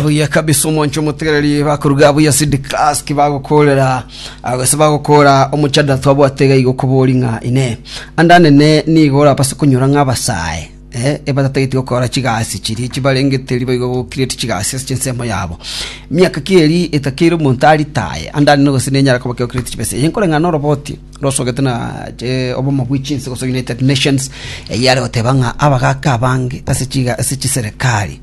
buya kabisa omwancho omotegereri bakoruga buya sidikaski bagokorera agase bagokora omochadara twabwate iga igo kobori ng'a ine andanene nigo orabase konyora ng'a abasae eh, ebatatageti gokora chigasi chiria chibarengeteri baigo gokireti chigasi ase chinsemo yabo miaka ki eri etakeire omonto aritaye andanene gose nenyara koba kegokireti chibesa eye nkore ng'a noroboti rosogete na eh, obomo bwe chinse gose united nations eyio are goteba ng'a abagaka abange ase chiga ase chiserekari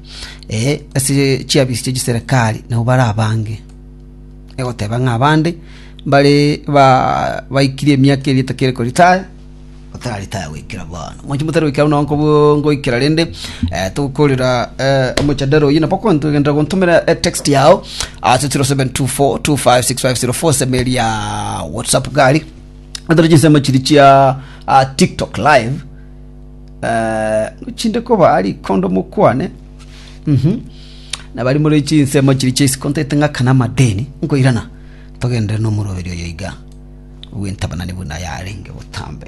eh, ase chiabisi chia chiserekari nabo bare abange egoteba ng'a abande mbare ba baikirie emiaka eri etakere koritaya batararitaya goikera bono moche motari goikera buna nko ngoikera rende eh, togokorera eh, omochandara oyi nabo kwantogenderera gontomera eh, text yao ase 0724256504 seme eria whatsapp gari atore chinsemo chiri chia ah, tiktok live Eh, chinde koba ari kondo mokwane Mhm. na bari muri chinsemo chiri chia isikontete ng'aka na amadeni nkoirana togendere nomoroberi oyo iga ogwentabanani buna yarenge botambe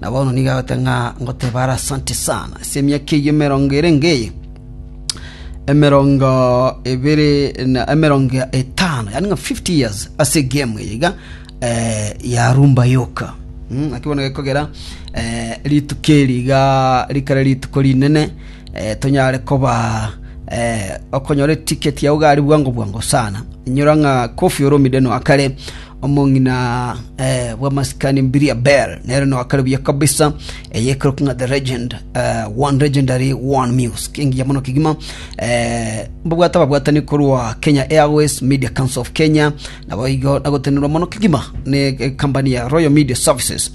Na bono nigo agote ng'a ngoteebe are asante sana ase emiaka eyio emerongo ere ngeye, emerongo ebere na emerongo etano, yaani ng'a 50 years ase egemu eye iga eh, ya rumba yoka Mm, naki bono gekogera eh, rituko eri iga rikare rituko rinene eh, tonyare koba eh, okonyora etiketi yao gari bwango bwango sana inyora ng'a kofi olomide noakare omong'ina bw'amasikani mbirie Bel, nere noakare buya kabisa, eye ekerokwa ng'a The Legend, One Legendary, One Music, engiya mono kegima. Eh, Mbabwate ababwatani korwa Kenya Airways, Media Council of Kenya, naboigo nagotenerwa mono kegima ne company ya Royal Media Services.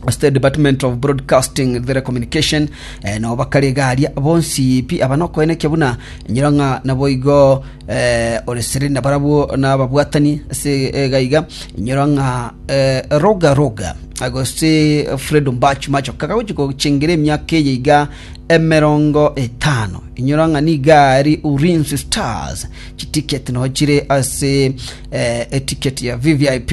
ase the department of broadcasting and telecommunication eh, nao bakare iga aria bonsi pi aba nokoenekia buna nyora ng'a naboigo eh, ore sere na barabwo na ababwatani ase eh, gaiga nyora ng'a eh, roga roga agose fredo mbach macho kagagochi gochengera emiaka eye iga emerongo etano inyora ng'a niga ari urinsi stars chitiket nochire ase eh, etiket ya vvip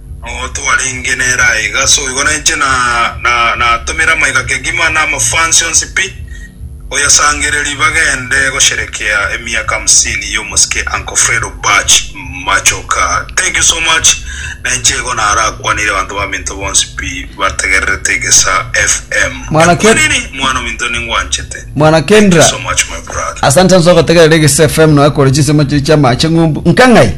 Noo twarenge nere aiga so igo ninche natomire amaiga kegima na amafans onsi pi oyasangereri bagende gosherekea emiaka hamsini yomosike Uncle Fredo Bach Machoka thank you so much ninche igo narakwanire abanto baminto bonsi pi bategererete egesa FM Mwana Ken- Ekwaniri mwana ominto ningwanchete Mwana thank you Kendra. so much my brother asante nso gotegerera egese fm noe kore chinsemo chiri chiamache ng'umbu nkang'ai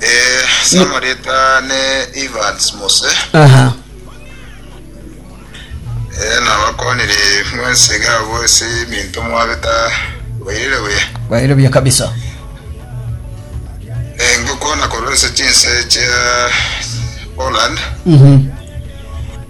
Eh, samoreta ne Evans Mose aha eh, nabakonire mwense gabo ase eminto mwabeta bairire buya baire buya kabisa Eh, ngokwana korwa ase chinse chia Holland Mhm.